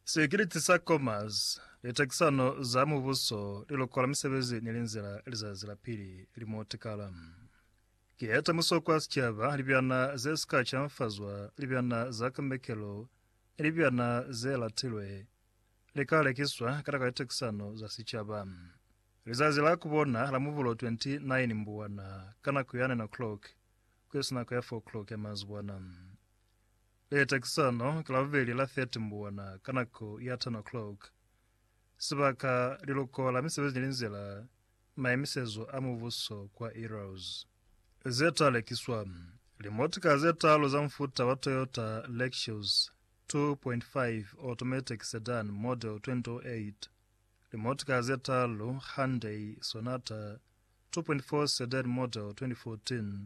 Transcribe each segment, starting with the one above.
Sikiliti sa Commerce, litakisano za mubuso, liloko la misebezi ni linzila lizazi la pili li mo tikala. Ki ya tamuso kwa sicaba, libyana ze si ka canfazwa, libyana za kambekelo ni libyana ze latilwe li ka lekiswa ka nako ya litakisano za sicaba. Lizazi la ku bona la Mubulo 29 Mbuwana ka nako ya 9 o'clock ku isi nako ya 4 o'clock ya mazibwana. Le takisano ka Labubeli la 30 Mbuwana ka nako ya 10 o'clock. Sibaka, Liloko la Misebezi ne li nzela Maemisezo a Mubuso kwa Eros. Ze ta lekiswa, Limotika ze talu za mufuta wa Toyota Lexus 2.5 Automatic Sedan Model 2008, limotika ze talu Hyundai Sonata 2.4 Sedan Model 2014,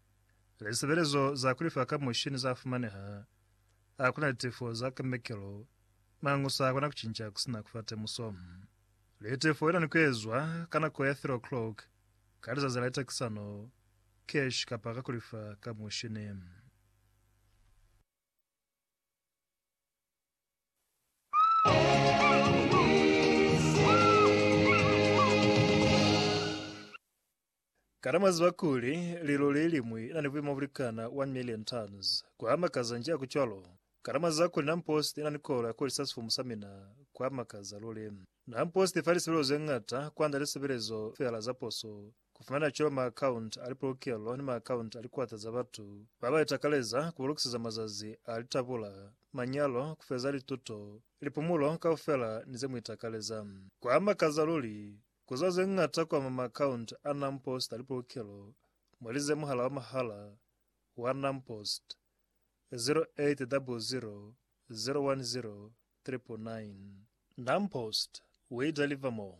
Lisebelezo za kulifa ka mushini za fumaneha. A kuna litefo za kemekelo, mañu sa kona kucinca kusina kufa temuso. Litefo ina ni kuezwa ka nako ya 3 o'clock ka lizazi la litakisano, cash kapa ka kulifa ka mushini. Kana mwaziba kuli lilo leliñwi nani buimo bulikana 1 million tons? Kuamakaza nji hakucwalo? Kana mwaziba kuli nampost inani kolo yakulisa sifumu samina? Kuamakaza luli. Nampost ifa lisebelezo zeñata kuanda lisebelezo feela zaposo, Ku fumana cwalo maakaunti a lipolokelo ni maakaunti a likwata za batu ba ba itakaleza ku ba lokiseza mazazi a litabula, manyalo, ku feza lituto, lipumulo kaufela ni ze mu itakaleza. Ku a makaza luli! Ku za ze ñata ku ama maakaunti a NamPost a lipolokelo, mwa lize muhala wa mahala wa NamPost, 0800 010 999. NamPost, We Deliver More!